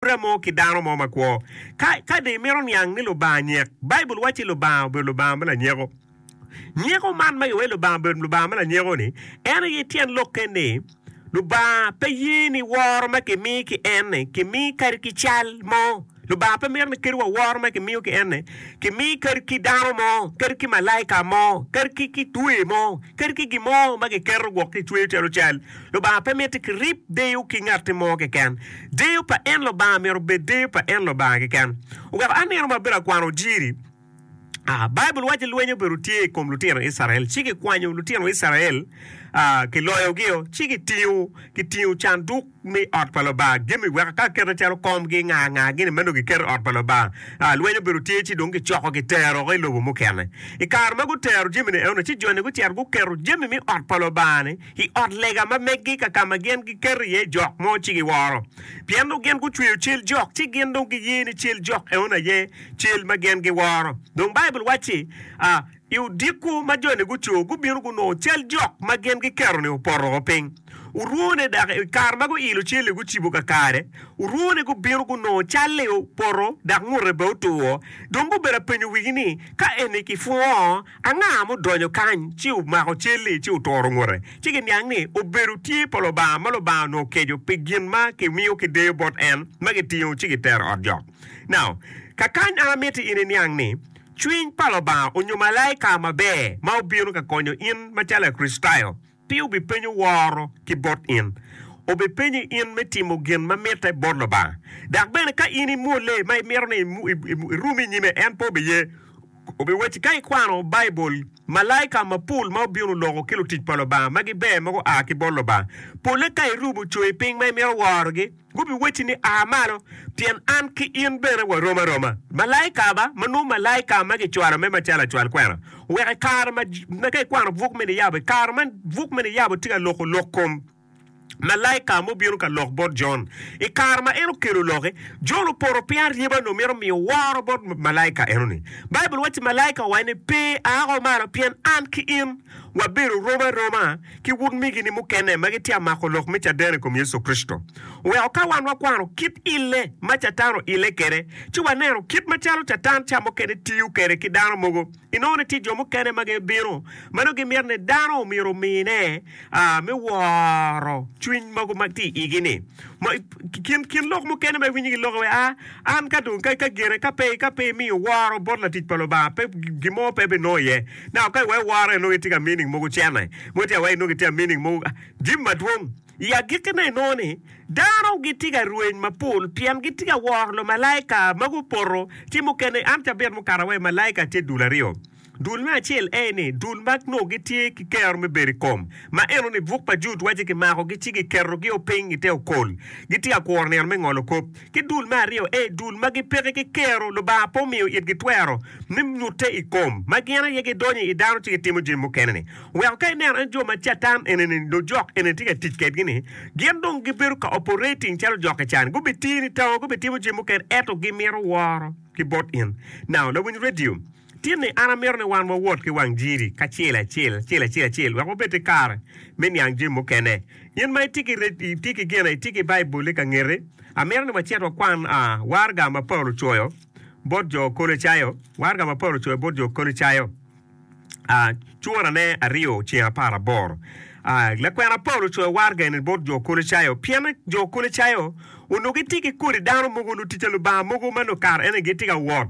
pore mo ki dano mo makwo. Ka, ka dong imito niang ni Lubanga nyek, Baibul wacci Lubanga obedo Lubanga me lanyeko. Nyeko man ma giwaci Lubanga obedo Lubanga me lanyeko-ni, en aye tyen lokke ni Lubanga pe ye ni woro ma kimi ki En-ni kimi kadi ki cal mo. Lubanga pe mito ni kadi wa woro ma kimiyo ki En-ni kimi kadi ki dano mo, kadi ki malaika mo, kadi ki, ki twer mo, kadi ki gin mo ma kiketo gwok kicweyo calo cal. Lubanga pe miti kirib deyo ki ngatti mo keken. Deyo pa en Lubanga myero obed deyo pa en Lubanga keken. Wek anino ma bedo akwano jiri, a, Baibul waco lweny obedo tye i kom lutino Icrael, ci gikwanyo lutino Icrael, a, giloyogio, ci gitingo, gitingo canduk me ot pa Lubanga, gemi wek ka kete calo kom gi nga nga gini meno giketo i ot pa Lubanga. A, lweny obedo tye ci dong gicoko gitero i lobo mukene. I kare ma gutero jami ni eno ni ci joni gucito guketo jami me ot pa Lubanga ni i ot lega ma meggi ka ka ma gin giketo iye jok mo ci giworo, pien dong gin gucweyo cal jok ci gin dong giye ni cal jok eno aye cal ma gin giworo. Dong Baibul wacci, A I odiko ma joni gucur, gubino gunongo cal jok ma gin giketo-ni opoto woko piny. Orwone dok i kare ma guilo cal-li gucibo kakare, orwone gubino gunongo cal-li opoto dok ngute bene otuwo. Dong gubedo apenyo wigi ni, 'Ka eni kipwongo Anga mudonyo kany, ci omako cal-li, ci oturo ngute, ci giniang ni obedo tye pa Lubanga, ma Lubanga onongo keco pi gin ma kimiyo ki deyo bot en, ma gitingo ci gitero ot jok. Now, ka kany an amiti in iniang ni, cwiny pa Lubanga onyo malaika maber ma obino ka konyo in macalo Lakricitayo, Pe obipenyo woro ki bot in. Obipenyi in me timo gin ma mitte bot Lubanga. Dok bene ka in imwolle ma imito ni irum i nyime, en pe obiye. Obiwacci ka ikwano Baibul, malaika mapol ma obino loko ki lutic pa Lubanga ma giber ma gua ki bot Lubanga, polle ka irubo coyi piny ma imito worogi. Gubiwacci ni, 'A malo, pien an ki in bene warom aroma. Malaika ba, ma nongo malaika ma gicwalo me macalo acwal kwena, wek i kare ma ma ka ikwano buk me niyabo, i kare ma buk me niyabo tye ka loko lok kom malaika ma obino ka lok bot Jon, i kare ma en okelo lokke, Jon opoto piny aryeba nongo mito miyo woro bot malaika enoni. Baibul wacci malaika owaco ni, 'Pe, a woko malo, pien an ki in. Wabedo rom aroma ki utmigini mukene ma gitye ka mako lok me caden i kom Yecu Kricito. Weko ka wan wakwano kit ille ma Catan oille kwede, ci waneno kit macalo Catan ca mukene tiyo kwede ki dano mogo, inongo ni tye jo mukene ma gibino ma nongo gimito ni dano omyero omine me woro cwiny mogo ma tye i igi-ni. Kin lok mukene ma iwinyo giloki iye, An ka dong, ka gire, ka pe imiyo woro bot latic pa Lubanga, gin mo pe ebinongo iye. Now ka iweko woro inongo itye ka meaning mogo cene mogo ci aweko inongo itye ka meaning mogo jami madwong. I agikkine inongo ni dano gitye ka rweny mapol pien gitye ka woro lumalaika ma gupoto ci mukene an cabit mukato awaco malaika tye dul aryo. Dul me acel aye ni dul ma nongo gitye ki kero me bedo i kom ma enoni buk pa Jud waco kimako gi ci giketo gio piny ite okol gitye ka kuro nino me ngolo kop. Ki dul me aryo aye, dul ma gipeki ki kero Lubanga pe omiyo itgi twero me nyutte i kom ma gin aye gidonyo i dano ci gitimo jami mukene-ni. Weko ka ineno en jo ma Catan enini, lujok enini tye ka tic kedgi-ni, gin dong gibedo ka operating calo jok i can. Gubitini tango, gubitimo jami mukene, ento gimito woro ki bot in. Now, lawiny radio. Tinni an amito ni wan wawot ki wang jiri kacel acel, acel acel acel, wek wabed ki kare me niang jami mukene. In ma itye ki red, itye ki gin, itye ki Baibulli ka ngeti, amito ni wacit wakwan waraga ma Paulo ocoyo bot jo Kolocayo, waraga ma Paulo ocoyo bot jo Kolocayo, curane aryo ceng apar aboro. Lakwena Paulo ocoyo waraga eni bot jo Kolocayo pien jo Kolocayo onongo gitye ki kodi dano mogo, lutic pa Lubanga mogo ma nongo kare eni gitye ka wot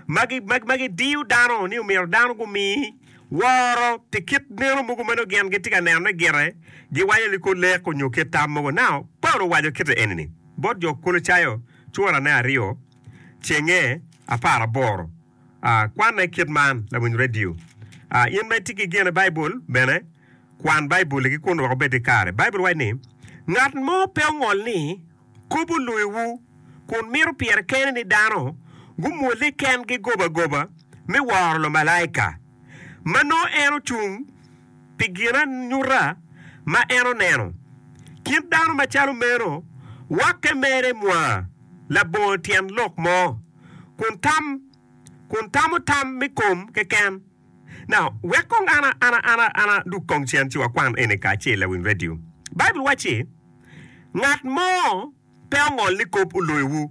ma gidiyo dano ni omyero dano gumi woro pi kit neno mogo ma nongo gin gitye ka nenone gire, giwaco ni kor lek onyo kit tam mogo. Nao, Paulo owaco kite eni-ni bot jo Kolocayo curane aryo cenge apar aboro. A Kwanne kit man, Lawiny redio. A In ma itye ki gin i Baibul bene, kwan Baibul-li ki kun wek obed ki kare. Baibul waco ni, Ngat mo pe ongol ni Kobo loyowu, kun mito pire kene ni dano gumwolle kengi gobagoba me woro lumalaika, ma nongo en ocung pi ginanyuta ma en oneno. Kit dano macalo meno wakke mere mwa labongo tyen lok mo, kun tamo tam me kom keken. Now, wek kong an, an, an, an adug kong cen ci wakwan eni kacel i wi redio. Baibul wacci, Ngat mo pe ongol ni kop oloyowu.